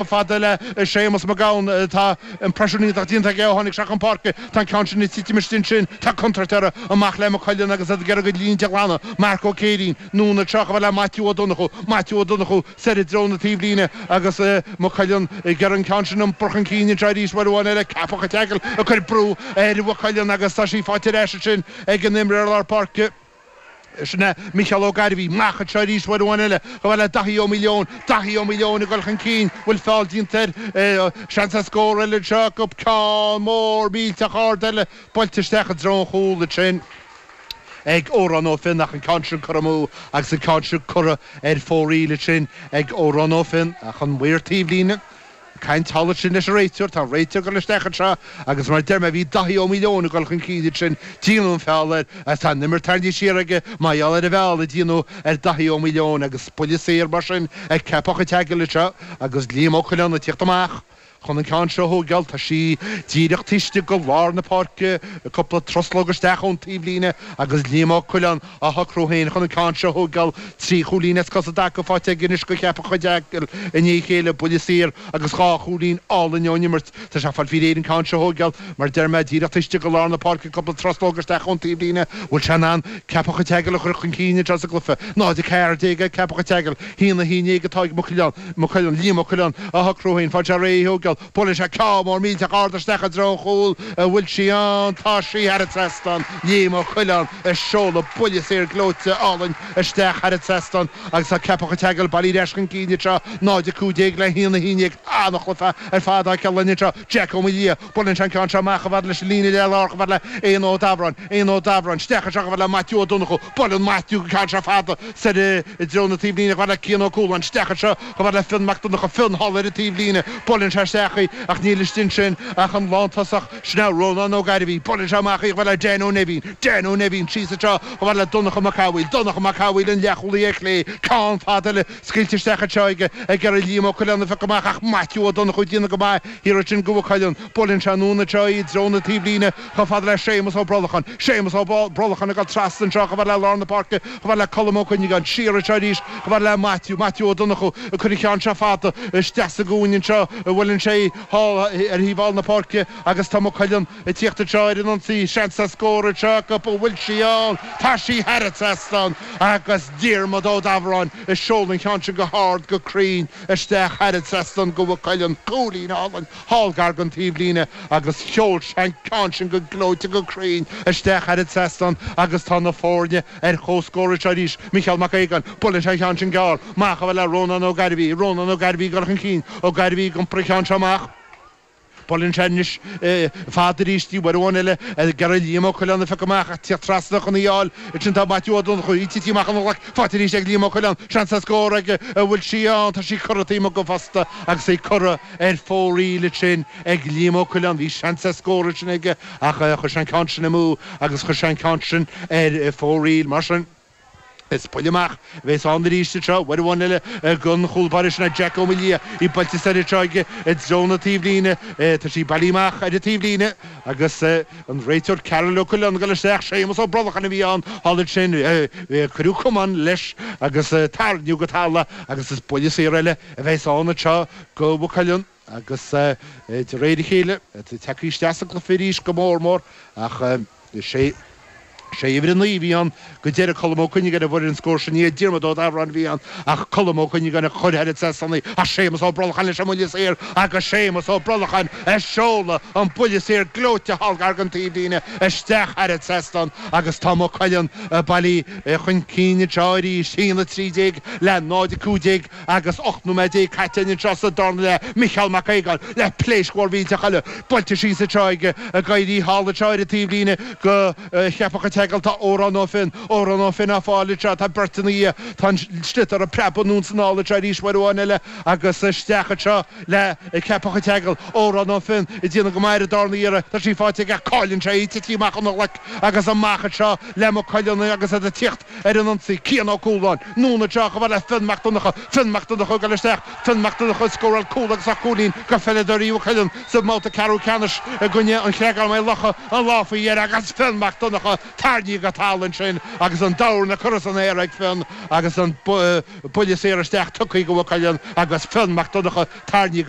fada le Séamus Mac Gabhann. Tá impression iontach déanta aige ó tháinig sé chun páirce. Tá an ceann sin ag titim istigh ansin. Tá contúirt orthu. Amach le Maigh Cuilinn agus iad ag iarraidh a gcuid línte a ghlanadh. Mark Ó Céirín. Anonn anseo chomh fada le Maitiú Ó Donnchú. Maitiú Ó Donnchú soir i dtreo na taobhlíne agus Maigh Cuilinn ag iarraidh an ceann sin a bhrú chun cinn anseo arís uair amháin eile. Ceapach an tSeagail ag cur brú ar Mhaigh Cuilinn agus tá sí faighte ar ais ansin ag an imreoir lár páirce. Sin é, Micheál Ó Gairbhí. Amach anseo arís uair amháin eile. Chomh fada le Daithí Ó Maoileoin. Daithí Ó Maoileoin ag dul chun cinn. An bhfuil feall déanta air? Seans ar scór eile anseo acu. Ceann mór millteach ard eile buailte isteach i dtreo an chúil ansin ag Odhrán Ó Finn ach an ceann sin curtha amú agus an ceann sin curtha ar fóraoil ansin ag Odhrán Ó Finn. Ach an maor taobhlíne. Caint thall ansin leis an réiteoir. Tá an réiteoir ag dul isteach anseo agus mar a deir mé bhí Daithí Ó Maoileoin ag dul chun cinn ansin, díonadh an feall air agus tá an imirt tarraingthe siar aige mar gheall ar an bhfeall a díonadh ar Daithí Ó Maoileoin agus buille saor mar sin ag Ceapach an tSeagail anseo agus Liam Ó Coileáin ag tíocht amach chun an ceann seo a thóigeáil, tá sí díreach taobh istigh de lár na páirce, cúpla truslóg isteach ón taobhlíne agus Liam Ó Coileáin. á shocrú féin chun an ceann seo a thógáil trí chúilín as cosa i dtaca faighte anois ag Ceapach an tSeagail i ndiaidh a chéile buille saor agus dhá chúilín álainn ón imirt. Tá sé ag fáil faoi réir an ceann seo a thógáil mar a deir mé, díreach taobh istigh de lár na páirce cúpla truslóg isteach ón taobhlíne an bhfuil sé in ann Ceapach an tSeagail a chur chun cinn anseo sa gcluiche? 0, 14 ag Ceapach an tSeagail, 1, 11 atá ag Maigh Cuilinn, Liam Ó Coileáin, á shocrú féin, ag fáil faoi réir í a thógáil. Buaileann sé ceann mór millteach ard isteach i dtreo an chúil an bhfuil sí ann. Tá sí thar an trasnán. Liam Ó Coileáin ag seoladh buille saor gleoite álainn isteach thar an trasnán agus tá Ceapach an tSeagail bailithe ar ais chun cinn anseo. 0:15 le 1:11. An-chluiche ar fad á cheileadh anseo. Jeaic Ó Maoildhia. Buaileann sé an ceann seo amach chomh fada leis an líne le lár chomh fada le Éanna Ó Dabhráin. Éanna Ó Dabhráin isteach anseo chomh fada le Maitiú Ó Donnchú. Buaileann Maitiú an ceann seo fada soir i dtreo na taobhlíne chomh fada le Cian Ó Cualáin. Isteach anseo. Chomh fada le Fionn Mac Donnacha, Fionn thall ar an taobhlíne, buaileann sé isteach í ach níl istigh ansin ach an lántosach sin é Rónán Ó Gairbhí, buaileann sé amach í, chomh fada le Dan Ó Neibhín, Dan Ó Neibhín síos anseo chomh fada le Donnacha Mac Cathmhaoil, Donnacha Mac Cathmhaoil an leathchúlaí ar chlé, ceann fada eile scaoilte isteach anseo ag ag iarraidh Liam Ó Coileáin a phiocadh amach ach Maitiú Ó Donnchú ag déanamh go maith thiar ansin do Mhaigh Cuilinn, buaileann sé anonn anseo í i dtreo na taobhlíne, Chomh fada le Séamus Ó Brolacháin, Séamus Ó Brolacháin ag dul trasna anseo, chomh fada le lár na páirce, chomh fada le Colm Ó Cuinneagáin, siar anseo arís, chomh fada le Maitiú, Maitiú Ó Donnchú, ag cur an cheann seo fada isteach sa gcúinne anseo, buaileann sé í thall ar thaobh thall na páirce agus tá Maigh Cuilinn ag tíocht anseo ar an ionsaí, seans ar scór anseo acu, an bhfuil sí ann? Tá sí thar an trasnán agus Diarmaid Ó Dabhráin ag seoladh an cheann sin go hard, go cruinn isteach thar an trasnán do Mhaigh Cuilinn, cúilín álainn. thall gar don taobhlíne agus sheol sé an ceann sin go gleoite go cruinn isteach thar an trasnán agus tá na foirne ar chomhscór anseo arís, Micheál Mac Aogáin, buaileann sé an ceann sin gearr, amach a fhad le Rónán Ó Gairbhí, Rónán Ó Gairbhí ag dul chun cinn, Ó Gairbhí ag iompar an cheann seo amach, buaileann sé anois fada arís síos uair amháin eile ag iarraidh Liam Ó Coileáin a phiocadh amach ach téadh trasna chun í a fháil, ansin tá Maitiú Ó Donnchú, í tití amach óna ghlaic, faighte arís ag Liam Ó Coileáin, seans ar scór an bhfuil sí ann, tá sí curtha taobh amuigh den phosta agus í curtha Ar fóraoil ansin ag Liam Ó Coileáin, bhí seans ar scór ansin aige ach chuir sé an ceann sin amú agus chuir sé an ceann sin ar fóraoil. Mar sin, is buille amach a bheas ann arís anseo. Uair amháin eile don chúl báire sin, Jack Ó Maolaodha, í buailte soir anseo aige i dtreo na taobhlíne. Tá sí bailí amach ar an taobhlíne agus an réiteoir Karol Ó Coileáin ag dul isteach. Séamus Ó Brolcháin a bhí ann thall ansin. Cuireadh camán leis agus tarraingíodh go talamh agus is buille saor eile a bheas ann anseo. Do Mhaigh Cuilinn agus de réir a chéile ag teacht isteach sa gcluiche arís go mór mór ach sé uimhir a naoi a bhí ann go deireadh, Colm Ó Cuinneagáin a fuair an scór sin. Ní Diarmaid Ó Dabhráin a bhí ann ach Colm Ó Cuinneagáin a chuir thar an trasnán í ach Séamus Ó Brolacháin leis an mbuille saor agus Séamus Ó Brolacháin ag seoladh an buille saor gleoite thall gar don taobhlíne isteach thar an trasnán agus tá Maigh Cuilinn bailí chun cinn anseo arís, 1:13 le 0:15. Agus 18 nóiméad caite anseo sa darna leath Micheál Mac Aogáin le pléasc mhór mhillteach eile buailte síos anseo aige ag éirí thall anseo ar an taobhlíne do Cheapach an tSeagail tá Odhrán Ó Finn Odhrán Ó Finn á fáil anseo tá beirt ina dhiaidh tá an sliotar ag preabadh anonn is anall anseo arís uair amháin eile agus isteach anseo le Ceapach an tSeagail Odhrán Ó Finn ag déanamh go maith ar an darna iarraidh tá sí faighte aige ach cailleann sé í tití amach óna ghlaic agus amach anseo le Maigh Cuilinn agus iad ag tíocht ar an ionsaí, Cian Ó Cualáin, anonn isteach a fhad le Fionn Mac Donnacha, Fionn Mac Donnacha ag dul isteach, Fionn Mac Donnacha ag scóráil cúl agus dhá chúilín do pheileadóirí Mhaigh Cuilinn sa mbabhta ceathrú ceannais i gcoinne An Chreagáin-Maigh Locha an lá faoi dheireadh agus Fionn Mac Donnacha tarraingthe go talamh ansin agus an dorn á chur san aer ag Fionn agus an buille saor isteach tugtha do Mhaigh Cuilinn agus Fionn Mac Donnacha tarraingthe go